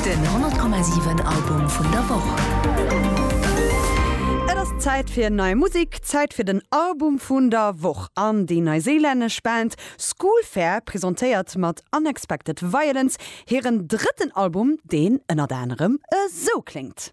Den 100,7 Album vun der Woch. Et ass Zäit fir nei Musek, Zäit fir den Album vun der Woch. An déi neiséilännesch Band School Fair presentéiert mat Unexpected Violence hiren drëtten Album, deen ënnert anerem esou kléngt.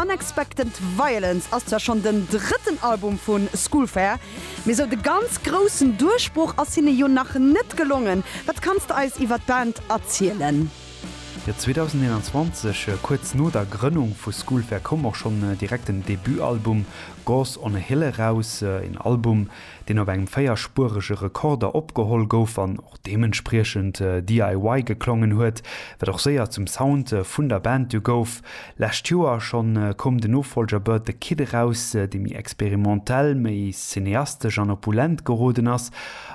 Unexpected Violence ass zwar schonn den drëtten Album vu School Fair, mee sou de ganz groussen Duerchbroch ass hinne jo nach net gelongen. Wat kanns de eis iwwer d'Band erzielen? Jo, 2021, kuerz no der Grënnung vu School Fair, koum och schonn direkt den Debutalbum Gods on a Hill eraus. Een Album, deen op engem véierspurege Rekorder opgeholl gouf an och deementspriechend DIY geklongen huet, wat och séier zum Sound vun der Band du gouf. Lescht Joer schonn koum den Nofolger Bird the Kid eraus, dee méi experimentell, méi cineastesch an opulent geroden ass,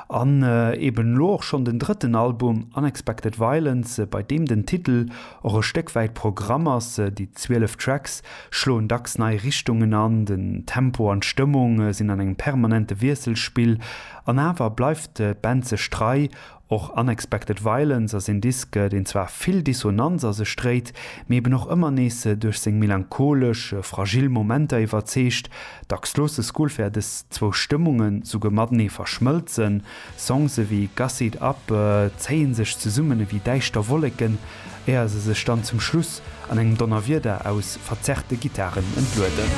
an eben elo och schonn den drëtten Album Unexpected Violence, bei deem den Titel och e Stéck wäit Programm ass, déi 12 Tracks schloen dacks nei Richtungen an, den Tempo an d'Stëmmung sinn an engem permanente Wiesselspill, an awer bleift d'Band sech trei. Och Unexpected Violence ass een Disk, deen zwar vill Dissonanz a sech dréit, mee eben och ëmmer nees duerch seng melancholesch, fragil Momenter iwwerzeegt. Dacks loosse Skullfair dës zwou Stëmmungen souguer matenee verschmëlzen. Songs ewéi Gussy it up zéie sech zesummen ewéi däischter Wolleken, éier se sech dann zum Schluss an engem Donnerwieder aus verzerrte Gittaren entlueden.